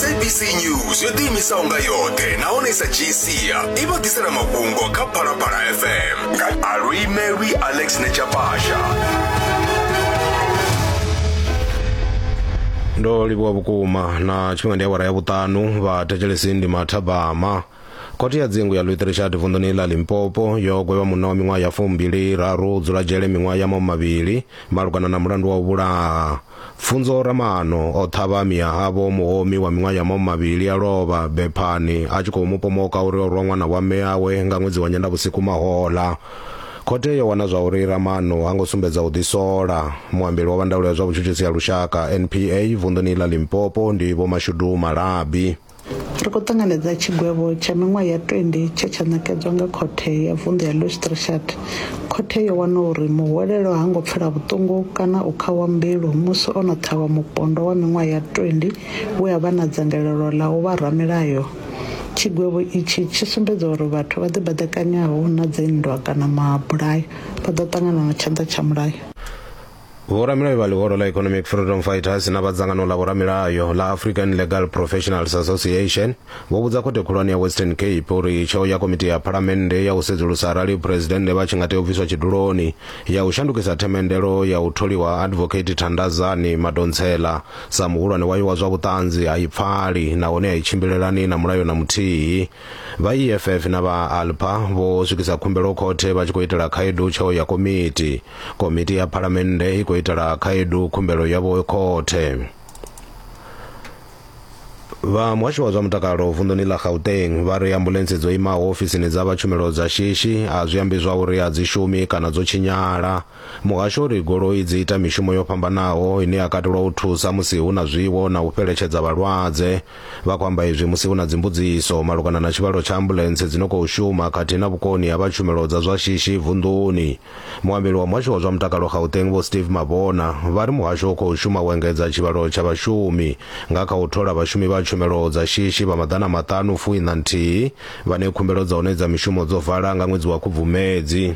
sabc news yo ḓiimisaho nga yoṱhe nahone sa gcia i vha ḓisela mafhungo kha phalaphala fm nga aluimelwi alex nechapasha ndo livhuwa vhukuma na tshifhinga ndi awara ya vhuṱanu vha thetshelesi ndi mathabama Khothe ya dzingu ya Luitherishati vunḓuni ḽa Limpopo yo gwevha munna wa miṅwaha ya fumbili raru u dzula dzhele miṅwaha ya mahumimavhili malugana na mulandu wa u vhulaha. Pfunzo Ramaano o ṱhavha miahavho muhomi wa miṅwaha ya mahumimavhili a lovha bephani a tshi khou mu pomoka uri o rwa ṅwana wa mme awe nga ṅwedzi wa Nyendavhusiku mahoḽa. Khothe yo wana zwa uri Ramaano ha ngo sumbedza u ḓisola. Muambeli wa vha ndaulo ya zwa vhutshutshisi ha lushaka, NPA, vunḓuni ḽa Limpopo ndi Vho Mashudu Malabi. Ri khou ṱanganedza tshigwevho tsha miṅwaha ya 20 tshe tsha ṋekedzwa nga khothe ya vunḓu ya Lustreschat. Khothe yo wana uri muhwelelwa ha ngo pfela vhuṱungu kana u khawa mbilu musi o no ṱhavha mupondwa wa miṅwaha ya 20 we a vha na dzangalelo ḽa u vha ramilayo. Tshigwevho itshi tshi sumbedza uri vhathu vha ḓibaḓekanyaho na dzinndwa kana mabulayo vha ḓo ṱangana na tshanḓa tsha mulayo. Vhoramilayo vha ḽihoro ḽa Economic Freedom Fighters na vha dzangano ḽa vhoramilayo ḽa African Legal Professionals Association vho vhudza khothe khulwane ya Western Cape uri tsheo ya komiti ya phalamennde ya u sedzulusa arali phresidennde vha tshi nga tea u bviswa tshiduloni ya u shandukisa themendelo ya u tholiwa ha Advocate Thandazani Madonsela sa muhulwane wayo wa zwa vhuṱanzi a i pfali nahone a i tshimbilelani na mulayo na muthihi. Vha EFF na vha ALPA vho swikisa khumbelo khothe vha tshi khou itela khaedu tsheo ya komiti. Komiti ya Phalamennde i khou itela khaedu khumbelo yavho khothe. Vha muhasho wa zwa mutakalo vunḓuni ḽa Gauteng vha ri ambuḽentse dzo imaho ofisini dza vha tshumelo dza shishi a zwi ambi zwa uri a dzi shumi kana dzo tshinyala. Muhasho u ri goloi dzi ita mishumo yo fhambanaho ine ya katelwa u thusa musi hu na zwiwo na u fheletshedza vhalwadze. Vha khou amba izwi musi hu na dzimbudziso malugana na tshivhalo tsha ambuḽentse dzi no khou shuma khathihi na vhukoni ha vha tshumelo dza zwa shishi vunḓuni. Muambeli wa muhasho wa zwa mutakalo Gauteng Vho Steve Mabona vha ri muhasho u khou shuma u engedza tshivhalo tsha vhashumi nga kha u thola vhashumi vha tshumelo dza shishi vha maḓana maṱanu fuiṋa nthihi vhane khumbelo dza u nedza mishumo dzo vala nga ṅwedzi wa Khubvumedzi.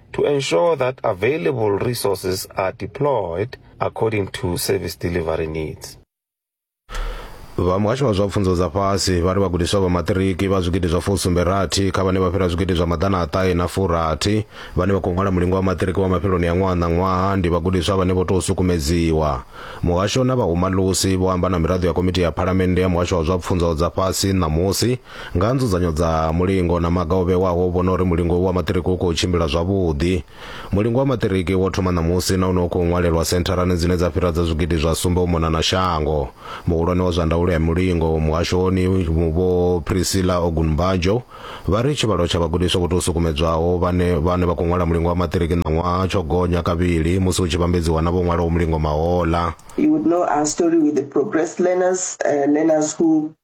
to ensure that available resources are deployed according to service delivery needs. vha muhasho wa zwa pfunzo dza fhasi vha ri vhagudiswa vha maṱiriki vha zwigidi zwa fusumbe rathi kha vhane vha fhira zwigidi zwa maḓana a ṱahe na furathi vhane vha khou ṅwala mulingo wa maṱiriki wa mafheloni ya ṅwaha na ṅwaha ndi vhagudiswa vhane vho tou sukumedziwa muhasho na vhahumalusi vho amba na miraḓo ya komiti ya phalamennde ya muhasho wa zwa pfunzo dza fhasi ṋamusi Nga nzudzanyo dza mulingo na maga o vhewaho u vhona uri mulingo wa maṱiriki u khou tshimbila zwavhuḓi. Mulingo wa maṱiriki wo thoma ṋamusi na une u khou ṅwalelwa sentharani dzine dza fhira dza zwigidi zwa sumbe u mona na shango. Muhulwane wa zwa ndaulo ya mulingo muhashoni Vho Priscilla Ogunbanjo vha ri tshivhalo tsha vhagudiswa vho tou sukumedzwaho vhane vhane vha khou ṅwala mulingo wa maṱiriki ṋaṅwaha tsho gonya kavhili musi hu tshi vhambedziwa na vho ṅwalaho mulingo mahoḽa. You would know our story with the progressed learners, uh, learners who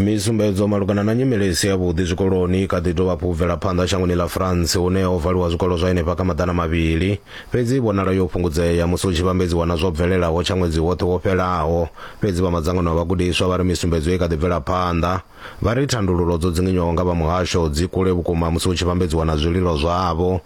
misumbedzo malugana na nyimele isi ya vhuḓi zwikoloni kha ḓi dovha hafhu bvela phanḓa shangoni ḽa France hune ho valiwa zwikolo zwa henefha kha maḓana mavhili fhedzi i vhonala yo fhungudzea musi hu tshi vhambedziwa na zwo bvelelaho tsha ṅwedzi woṱhe wo fhelaho fhedzi vha madzangano a vhagudiswa vha ri misumbedzo i kha ḓi bvela phanḓa vha ri thandululo dzo dzinginywaho nga vha muhasho dzi kule vhukuma musi hu tshi vhambedziwa na zwililo zwavho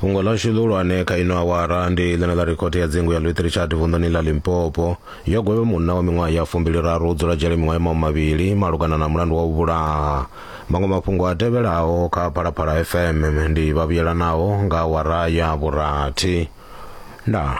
fhungo ḽashu ḽihulwane kha ino awara ndi ḽene ḽa ri khothe ya dzingu ya louis richard vunḓuni ḽa limpopo yo gwevhe munna wa miṅwaha ya fumbiliraru u dzula dzhele miṅwaha ya mahu mavhili malugana na mulandu wa u vhulaha maṅwe mafhungo a tevhelaho kha phalaphala fm ndi vhavhuyelanaho nga awara ya vhurathi ndaa